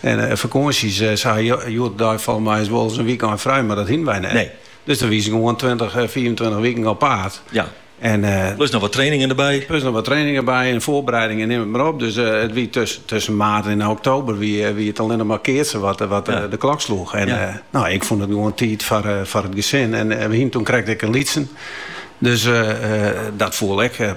En fakânsjes, se ha hjoed-de-dei folgens my wolris in wykein frij, mar dat hienen wy net. Nee. Dus dan wiest gewoan tweintich, fiifentweintich wiken op paad. Ja. En, eh, plus noch wat trainingen derby. Plus noch wat trainingen derby en foarbereidingen, neam it mar op. Dus eh, it wie tusken, tusken maart en oktober wie, eh, wie it allinne mar keatsen wat, eh, wat de klok sloech. En ja. no, ik fûn it gewoan tiid foar, foar it gesin. En wy hienen toen krekt in lytsen. Dus dat fûn ik.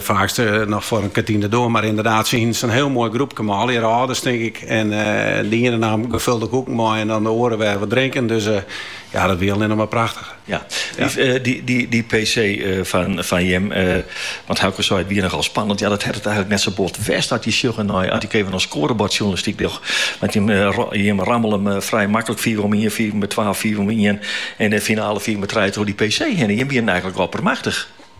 Faaks noch foar in kantine dêr, mar ynderdaad, se hiene sa'n hiel moai groepke mei allegear âlders, tink ik. En de iene naam gefulde koeken mei en dan de oare wer wat drinken. Dus ja, dat wie allinne mar prachtich. Ja, dy PC fan jim, want Auke sei it wie nochal spannend. Ja, dat hat it eigenlik net sa bot west as je sjogge nei as ik efkes oan skoarebordjoernalistyk doch. Want jim rammelje frij maklik fiif om ien, fiif mei twa, fiif om ien en de finale fiif mei trije troch dy PC hinne. Jim wienen eigenlik oppermachtich.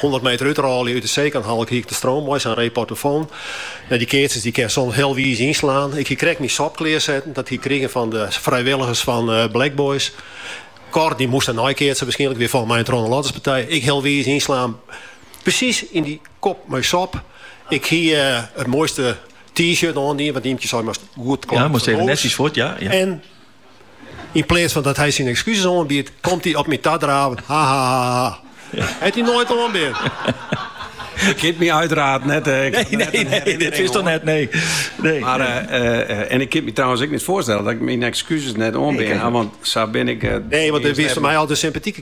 Hûndert meter út 'e râlje út De Seadhal. Ik hie ik destiids mei sa'n reportofoon. Nei dy keatsers, dy kin soms hiel wiis ynslaan. Ik hie krekt myn sop klear setten, dat hie ik krigen fan de frijwilligers fan Black Boys. Cor dy moast der nei keatse, wierskynlik wer fan myn troanladderspartij. Ik hiel wiis ynslaan, presys yn dy kop mei sop. Ik hie it moaiste T-shirt oandien, want Imkje sei moatst goed klaaid fan hûs. En Yn pleats fan dat hy syn ekskuses oanbiedt, komt hy op my tadraven. Ha ha ha ha. Hat hy noait oanbean. Jo kinne my uteraard net... Uh, nee, nee, nee, dit is toch net, nee. nee. Maar, eh, eh, en ik kin my trouwens ek net foarstelle dat ik myn ekskuses net oanbean, want sa bin ik... nee, want hy is foar my altyd sympatike